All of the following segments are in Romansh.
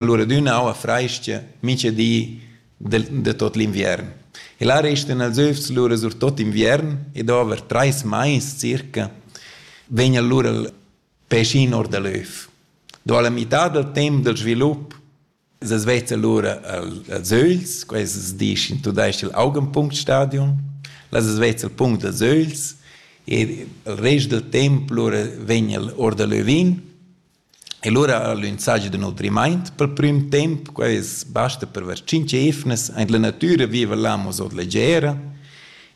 Allura d'üna aua frais-cha mincha di del da tuot l'inviern. E là restan els övs lura sur tuot inviern e dover trais mais circa vegn allura il pecin or da l'öv. Do la mità dal temp del svilup es es vezza lura als ögls, quest es disch in tudais-ch il Augenpunktstadium, las es vezza il punct dels ögls e il rest del temp lura vegn el or da l'övin E lura ha el insatgi da nutrimaint pel prüm temp, quai es basta per ver tschinch eivnas. Aint la natüra viva l'amo sot leggera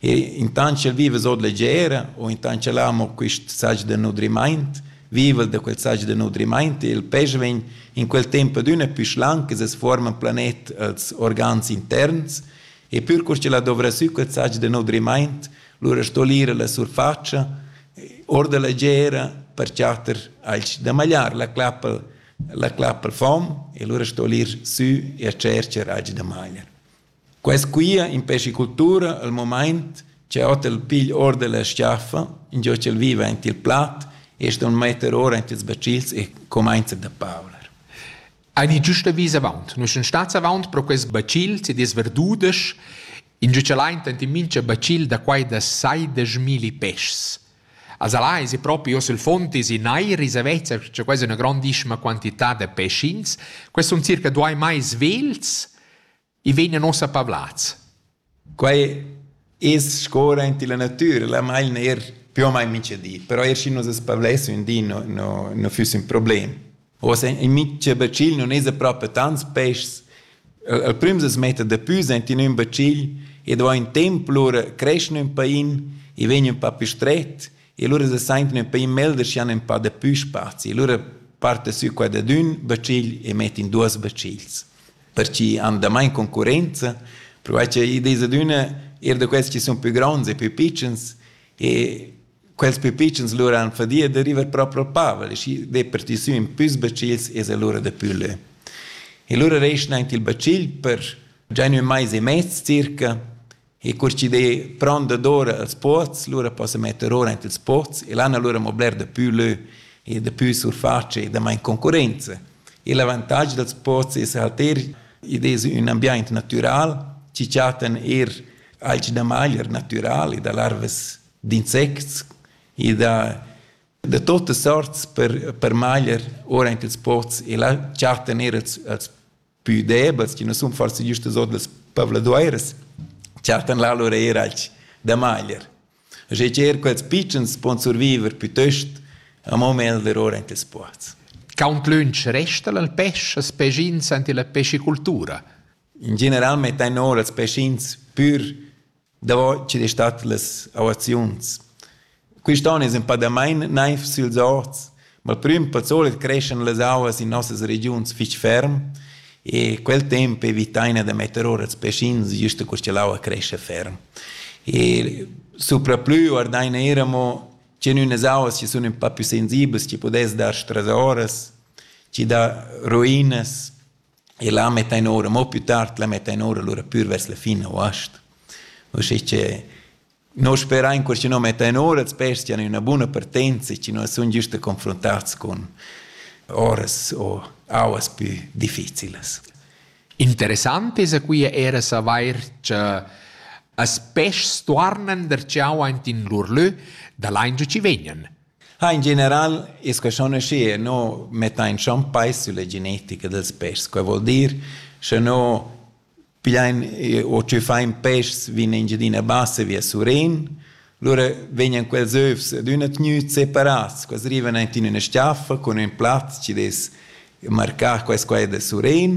e intant ch'el viva sot leggera u intant ch'el amo quist saggi da nutrimaint, viva el da quel saggi da nutrimaint e il pesch vegn in quel temp adüna pü schlanc e se's fuorma planet als organs interns e pür cur ch'el ha dovrà sü quel saggi da nutrimaint, lura sto l'ira la surfatscha or da la gera per chatter alch da magliar la clappel la clappel fom e lura sto l'ir sü e tschercher alch da magliar. Quest quia in pescicultura al moment c'è ot el pigl or della schiaffa, in giò c'el viva int il plat e ston metter ora int ils bacils e comenza da pavlar. Eine giusta vis avant. Nus sun stats avant pro quest bacil, se dis verdudesch, In giuchalaint ant in mincha bacil da quai da saideschmilli peschs. A Zala esi propi hoz il fond esi neir esa vezza cha quai es üna grandissima quantità da peschins. Quels sun circa duai mais vels e vegnan uossa pavlats. Quai es sco aint illa natüra, la mail neir più o mai minchadi, però eir schi nus as pavlessün di no, no, no füss ün problem. Oz in mitsch bacil non es propi tants peschs. El prüm se smetta dapü senti ün bacil e do in temp, lura creschn ün pain e vegn ün pa più stret e lura se sainten ün pain melder schi han ün pa dapü spazi. E lura parte sü qua dad ün bacil e met in duos bacils. Perche han damain concurrenza, provair che id es adüna eir da quels chi sun pü gronds e pü pitschens e quels pipitschens lura han fadia da river proprio Pavel e schi deperti sü in püs bacils es el lura da pülle. E lura reschna aint il bacil per già ün mais e mez circa e cur chi de prend d'ora als pots, lura possa metter ora aint ils pots e l'han allura mo bler da pü lö e da pü surface e da main concurenza. E l'avantage dels pots es halt er, id es ün ambiaint natüral, chi chattan er alch da maglier natüral e da larvas d'insects. I dà da tuttas sorts per, per magliar ora anche ils pots e là chattan er els, els pü debels, che non sun forse giustos od las pavladueiras, chattan là lura er alch da magliar. E cer quels pitschens pon surviver piuttost amo meglder ora anche ils pots. Count lunch resta il pesce, els pecins ante la pescicultura? In general mettan ora els pecins pür davo chi'd es stat las auaziuns. Quist on es ün pa damain naiv süls orts, ma il prüm pel solit creschan las auas in nossas regiuns fich ferm e quel temp evitaina da metter ora ils peschins güst cur cha l'aua crescha ferm. E supraplü guardaina eir amo che in ünas auas chi sun ün pa pü sensiblas, chi pudess dar strasoras, chi dà ruinas e là mettain ora, mo più tard la mettain ora lura pür vers la fin august. Uschè che noi sperain che schi no mettain ora els pesti han üna buna partenza e chi no sun giusta confrontats cun oras o auas pü difficilas. Interessant es qui era savair che as peschs tuornan der ciao aint in lur lö da là in giu ci vegnan. Ha in general es que schon aschi e no metta in schon peis sulla genetica dels peschs. Quai vuol dir, sche no pigliain o tschüffain peschs vin Engiadina Bassa via Surén, lura vegnan quels övs ad üna tgnüt separats. Quels rivan aint in üna stiaffa cun ün plaz chi'd es marcà quai e quai da Surén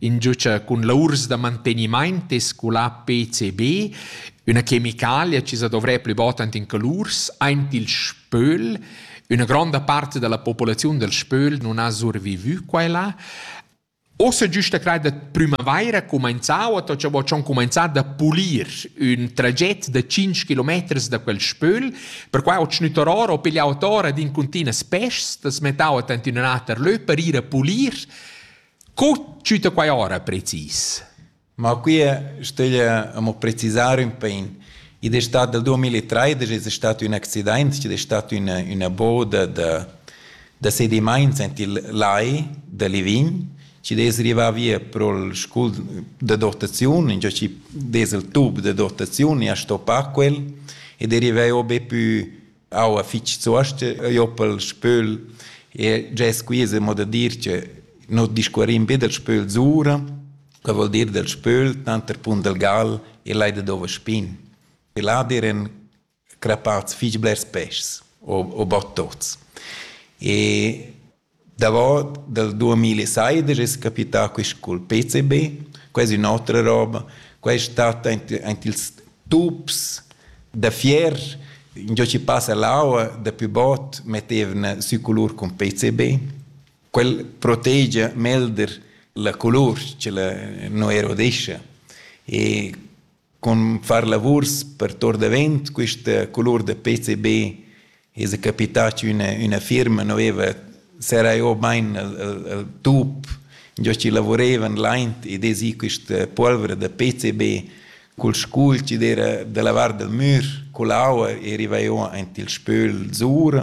ingiucha cun laurs da mantegnimaint e sculà PCB, üna chemicalia chi sa dovrè plü bod ant in calurs, aint il spöl. Üna gronda part da la populaziun dal spöl nun ha survivü qua e là. Ossa güsta crai da prümavaira cumainzà o to cha vo dschon cumainzà da pulir ün traget da 5 kilometers da quel spöl, perquai ho tschnüttar or o piglià ot ora d'incuntinas peschs, t'as mettà ot ant in ün'ater lö per ir a pulir. Co tschüta quai ora precis? Ma quia stöglia amo precisar ün pin. Id es stat dal 2013 es stat ün accidaint chi'd es stat üna üna boda da da sedimaints aint il lai da Livign chi'd es rivà via pro'l scul da dotaziun, ingio chi dess il tub da dotaziun e a stoppa quel ed è rivà o be pü aua fitg zuosta joppel spöl e già squisa mo da dir che no discuorin be del spöl zura che vuol dir del spöl tanter pun del gal e leida dova spin e là diren crapats fitg blers peschs o, o bot tots e Davot dal duamilla e seidesch es capità quist cul PCB. Quai es ün'otra roba. Quai es stat aint aint ils tups da fier. Üngiò chi passa l'aua dapü bod mettevna sü culur cun PCB. Quel protegia melder la culur cha la nu erodescha. E Cun far lavurs per tuor davent quista colur da PCB esa capità chi üna üna firma nu vaiva serrà ò bain il il tup giò chi lavurevan laint ed esi quista puolvra da PCB cul scul chi d'eira da lavar dal mür, cull'aua e rivà ò aint il spöl zura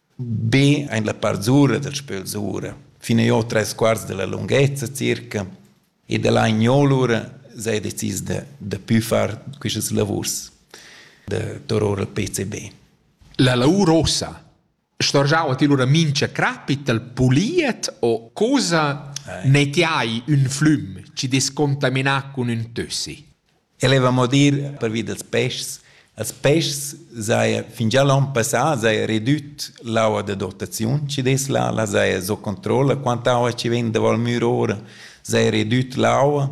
Be ein la part sura dal spöl sura, fin e ot tres quarts dalla lunghezza circa, ed ella in gnolura s'ha decis da da pü far quistas lavurs da tor our al PCB. La lavur ussa storgiava ti lura mincha crappi t'al puliet o cosa ne ti hai ün flüm chi dess contaminar cun ün tössi? El heva mo dir pervi dals peschs. Als peschs saja fingià l'on passà saja redüt l'aua da dotaziun chi dess là, là saja sco controlla quanta aua chi vegn da Val Müra ora, saja redüt l'aua.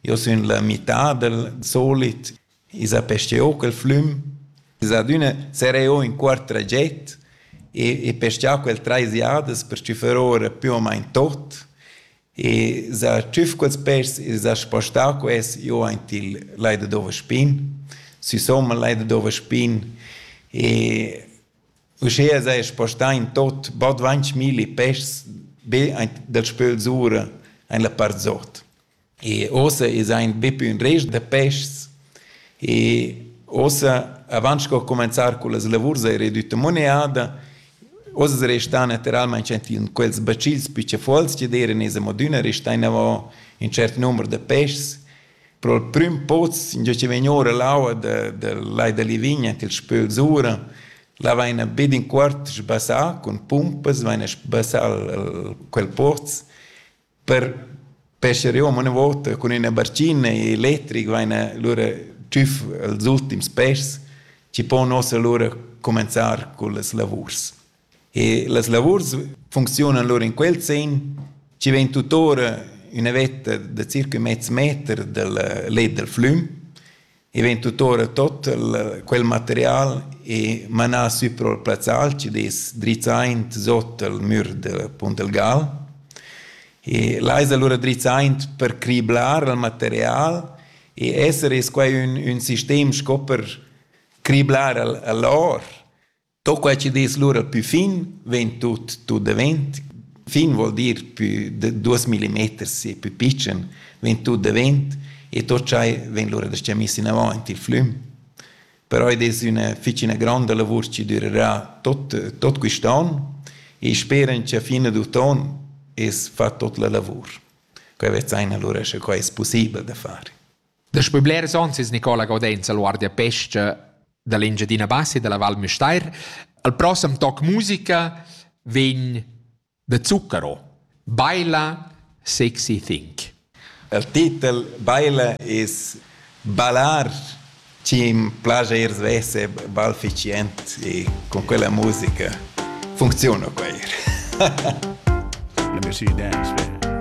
Io sun la mità dal solit. I s'ha pescheu quel flüm. Es adüna serè o in quart traget e, e peschà quel trais jadas per stüffer ora più o main tot. e sa tschüf quels pêrs e s'ha spostà quels giò aint il Lai da Dovaspin, sü somma il Lai da Dovaspin e uschea s'haja spostà in tot bod dvainch milli pêrs be aint dal spöl sura aint la part zot. E uossa esa aint be pü ün rest da pêschs E ossa, avant sco cumenzar con las lavurs era edütta moneada, oz restan naturalmein in quels bacils picciafols che deran es amo adüna restà inavant in cert number da peschs. Pro il prüm poz, ingio chi vegn ora l'aua da, da Lai da Livigna til spöls ura, la vaina be d'in quart sbassà cun pumpas, vaina sbassà quel poz per pescher io una volta con ina barcina e elettric vaina lura tschüf els ultims pes chi pon ossa lura comenzar con las lavurs. E las lavurs funziunan lura in quel sen chi vegn tutora üna vetta da circa mezz meter dal let dal flüm I vegn tuttora tot quel material e manà sü pro il plazzal chi'd es drizzaint sot al mür del Puntelgal. E là es alura drizzaint per criblar il material e esser es quai ün ün sistem sco per criblar al a l'or. Tot quei che dis lura pü fin vegn tut tut davent. Fin vuol dir pü de duos millimeters e pü pitschen vegn tut davent e tot schai vegn lura da star miss inavant il flüm. Però id es üna fich üna gronda lavur chi durerà tot tot quist'on e speran cha fin ad uton es fat tot la lavur. Quai vezzaina lura sche quai es pussibel da far. Daspö blers ons es Nicola Gaudenz al guardapescha da l'Engiadina Bassa e da la Val Müstair. Al prossem toc musica vegn da Zucchero, Baila Sexy Think. Il titel Baila es ballar chi im plajair svesse balficient e con quella musica funziona quair. Let me see you dance, man.